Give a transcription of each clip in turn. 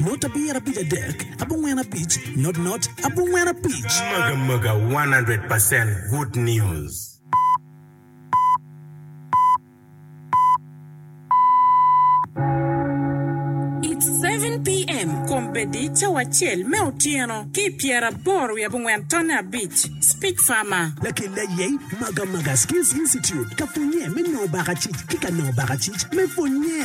Not abir abic adek abongwen abic not not abongwen abic. Mega mega one hundred percent good news. It's seven PM kombeddi cawa acel me otyeno ki pyera aboro wiye abongwen tonne abic. Speech Farmer. Lakelle aye Maga Maga Skills Institute ka pwonnye me nongo baka cic ki ka nongo baka cic me pwonnye.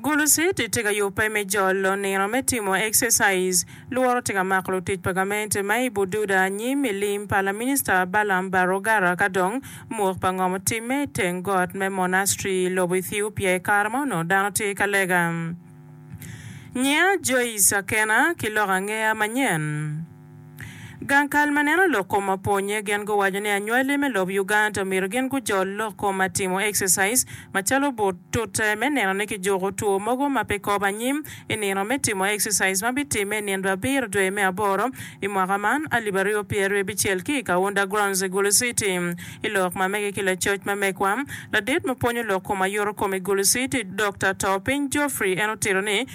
Gulucid tye ka yubbe me jolo nino me timo exercise. Lworo tye ka mako lutic pa gamente ma i Bududa anyim i lim pa laminista Balaam Barwagara ka dong mwok pa ngom otimme i teng got me Monastri i lobo Ethiopia i kare ma onongo dano tye ka lega. Nyiya Joyce Akena ki lok angeya manyen. Gang kal ma neno lok kom mapwonye gen guwaco ni anywali me lob Uganda omyero gen gujol lok kom ma timo exercise macalo but tute me neno ni kijuko two mogo ma pe kop anyim i nino me timo exercise ma bitime i nino abiro dwe me aboro i mwaka man alip aryo pyer ryo bicel ki i Kaunda Grounds i Gulu City. I lok ma mege ki lacoc ma megwa, ladit ma pwonyo lok kom ayuto kom i Gulu City, Doctor Topiny Geoffrey en otito ni,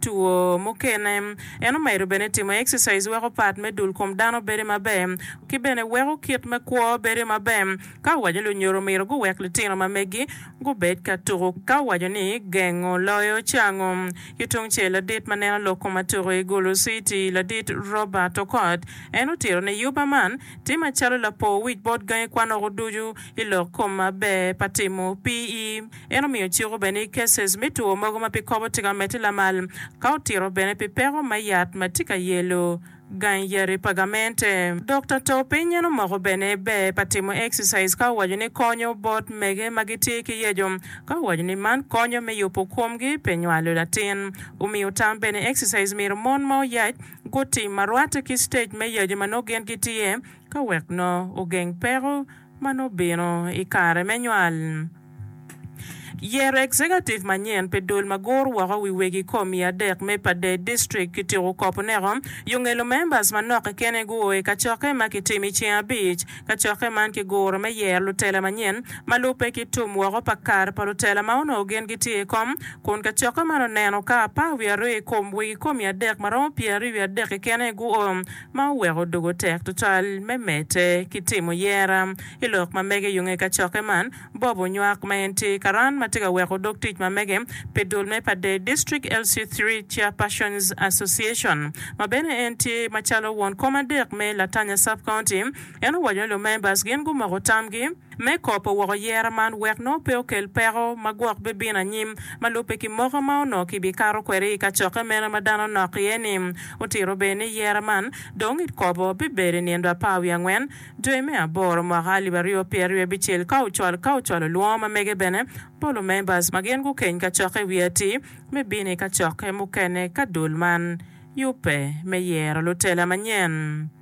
two mukene. En omedo bene ni timo exercise weko part me dul kom dano bedo maber ki bene weko kit me kwo bedo maber. Ka owaco ni lunyodo omyero guwek litino ma megi gubed ka tuku ka owaco ni gengo loyo cango. Ki tungcel ladit ma neno lok kom atuku i Gulu City ladit Robert Okot en otito ni yuba man tye macalo lapor wic bot gangi kwan oko ducu ilok kom maber pa timo PE. En omiyo ciko bene i cases me two mogo ma pe kobo tika mete lamal ka otito bene pi peko me yat ma tye ka yelo gang yadi pa gamente. Dokta to piny en omoko bene ber pa timo exercise ka owaco ni konyo bot mege ma gitye ki yeco ka owaco ni man konyo me yubo komgi pe nywalo latin. Omiyo tam bene exercise myero mon ma oyac gutim ma rwate ki stage me yaco ma nongo gin gitye ka wek nongo ogeng peko ma nongo obino i kare me nywal. Yero Executive manyen pi dul ma guru woko wi wegi kom i adek me Padey District kityeko kop oneko yonge lumembers manok kekeni guo i kacokke ma kitimo i ceng abic. Kacokke man ki guro me yero lutela manyen ma lubbe ki tum woko pa kare pa lutela ma onongo gin gitye i kom kun kacokke man oneno ka apar wiye aryo i kom wegi kom i adek ma romo pyeraryo wiye adek kekeni guo ma oweko doko tek tutwal me medde ki timo yera. I lok ma mege yo nge kacokke man, Bob onywak ma en tye karan ma tye ka weko dog tic ma mege pi dul me pa Dei District LC-three Chairpersons Association, ma bene en tye macalo won kom adek me Latanya Sub-County. En owaco ni lumembers gin gumoko tamgi, me kopo woko yera man wek nongo pe okel peko ma gwok bibino anyim ma lubbe ki moko ma onongo kibikato kwede i kacokke meno ma dano nok iye-ni. Otito bene ni yera man dong itkobo bibedo i nindo apar wiye angwen dwe me aboro mwaka alip aryo pyeraryo abicel ka ocwalo ka ocwalo lwongo ma mege bene bot lumembers ma gin gukeny kacokke i wi atir me bino i kacokke mukene ka dul man yubbe me yero lutela manyen.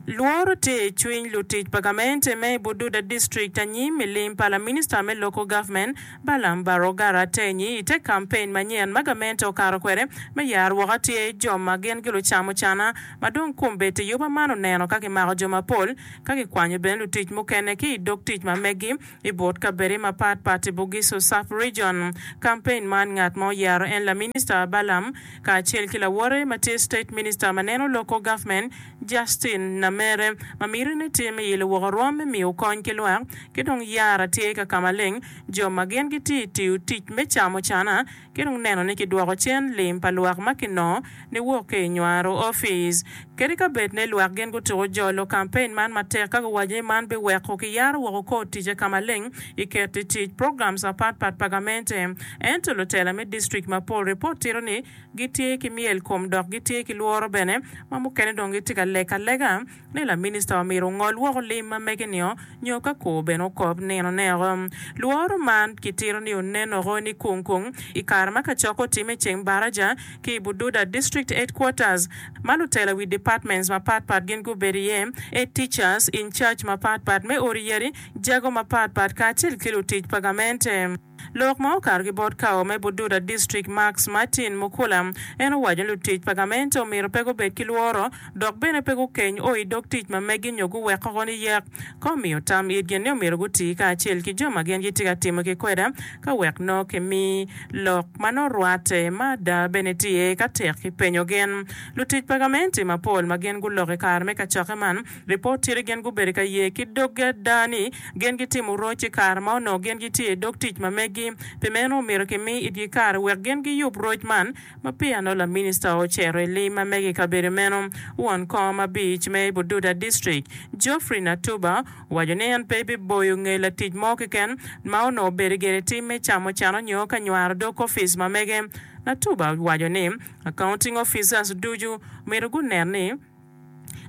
Lworo tye i cwiny lutic pa gamente me i Bududa district anyim i lim pa laminista me Local Government Balaam Baroga Ratenyi i te kampein manyen ma gamente okato kwede me yaro woko atir jo ma gin gilucamo cana ma dong kombeddi i yoba man oneno ka kimako jo mapol ka kikwanyo bene lutic mukene ki i dog tic ma meggi I bot kabede mapat pat i Bugisu Sub Region, kampein man ngat ma oyaro en laminista Balaam kacel ki lawote ma tye State Minister ma neno loko government Justin Namere ma mitine tye me ilo woko rwom me miyo kony ki lwak ki dong yara tye ka kamaleng jo ma gin gitye tiyo tic me camo cana ki dong neno ni kidwoko cen lim pa lwak ma kinongo niwok ki i nywaro opic kadi ka bed ni lwak gin gutuko jolo kampein man matek ka guwaco ni man biweko kiyaro woko kor ticce ka maleng i keto i tic programs apat pat pa gamente. Ento lutela me district mapol ripot tito ni gitye ki myel kom dok gitye ki lworo bene ma mukene dong gitye ka lek alega ni laminista omyero ongol woko olim ma mege nio nyo ka kor bene okop nino neko. Lworo man kitito ni onen oko ni kung kung i kare ma kacok otimme i ceng baraja ki i Bududa District Headquarters ma lutela wi departments mapat pat gin gubedo iye, Head Teachers, In Charge mapat pat me odi yadi, jago mapat pat kacel ki lutic pa gamente. Lok ma okato ki bot kawa me Bududa District Max Martin Mukula, en owaco ni lutic pa gamente omyero pe gubed ki lworo dok bene pe gukeny o i dog tic ma megi nyo guwek koko ni yek ka omiyo tam itgi ni omyero guti kacel ki jo ma gin gitye ka timo ki kweda ka wek nongo kimi lok ma nongo rwatte ma ada bene tye ka tek ki penyo gin lutic pa gamente mapol ma gin guloko i kare me kacokke man Lipot tye ni gin gubedo ka ye ki doggi ada ni gin gitimo roc i kare ma onongo gin gitye i dog tic ma meggi. Pi meno, omyero kimi itgi kare wek gin giyub roc man. Ma peya nongo laminista ocito i lim ma mege i kabedo meno, won kong ma abic me Bududa District, Geoffrey Natuba, owaco ni en pe biboyo nge latic mo keken ma onongo bedo gire tim me camo ceno nyo ka nywaro dog opic ma mege. Natuba owaco ni, Accounting officers ducu myero gunen ni,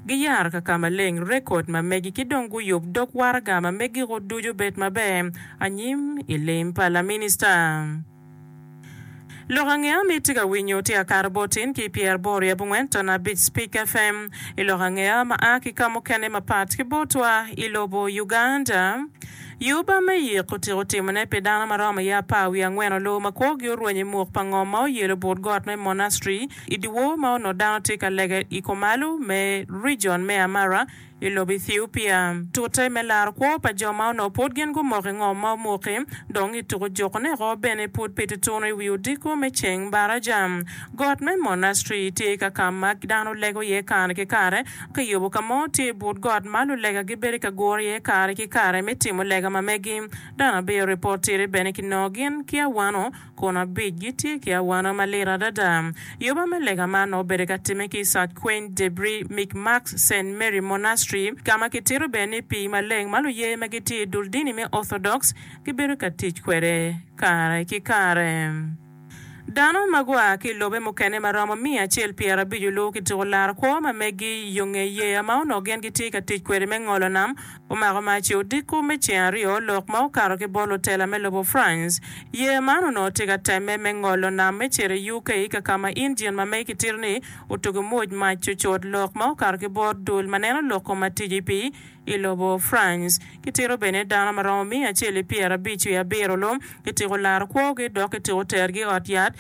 Giyaro ka ka maleng, rekod ma megi, ki dong guyub dog waraga ma megiko ducu obed maber anyim i lim pa laminista. Lok ange ami tye ka winyo tye ka kato bot tin ki pyer aboro i abongwen tona abic Spik FM i lok ange a ma a ki ka mukene mapat ki botwa i lobo Uganda. Yuba me yik otiko timone pi dano ma romo iye apar wiye angwen olowo ma kwogi orwenyo i muk pa ngom ma oyelo but got me Monastri i dyewor ma onongo dano tye ka lege i kumalo me rijon me Amara i lobo Ethiopia. Tute me laro kwo pa jo ma onongo pud gin gumoko i ngom ma omuki, dong i tuko jokone oko bene pud pe tutunu i wi odiko me ceng mbaraca. Got me Monastri tye ka ka ma dano lego iye kare ki kare. Kiyubo ka mo tye i but got ma lulega gibedo ka guro iye kare ki kare me timo lega ma megi. Dano abiyo ripot tire bene kinongo gin ki awano. kun abic gitye ki awana malit adada. Yoba me lega man nongo obedo ka timme ki i Sac Quaint Debris, Micmacs, Saint Mary Monastery, ka ma kitito bene ni pii maleng ma luye ma gitye i dul dini me Orthodox gibedo ka tic kwede kare ki kare. Dano ma gua ki i lobe mukene ma romo miya acel pyerabic oluwo ki tuko larkwo ma megi i yo nge yeya ma onongo gin gitye ka tic kwede me ngolo nam, Omako mac i odiko me ceng aryo lok ma okato ki bot lutela me lobo France. Yeya man onongo tye ka temme me ngolo nam me cito i UK kakama injin ma mege kitito ni otugo mwoc mac cucut lok ma okato ki bot dul ma neno loko ma tic i pii i lobo France. Kitito bene dano ma romo miya acel i pyerabic wiye abiro lum kitiko laro kwogi dok kitiko tergi i ot yat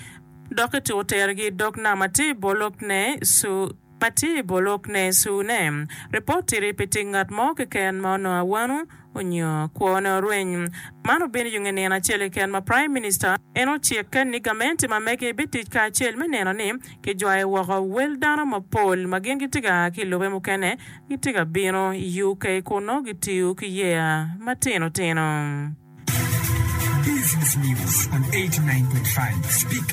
dok kitiko tergi i dog nam atir bolo pne Su Paci bor lok ne Suu ne, Report tiri pi tic ngat mo keken ma onongo awano onyo kwo ne orweny. Man obino yung inino acel keken ma Prime Minister en ocik ken ni gamenti ma mege bi tic kacel me neno ni ki jwayo woko wel dano ma pol ma gin gitye ga ki ilube mukene gitye ga bino i UK kun nongo gitiyo ki yeya ma tino tino. Business News on 89.5 Speak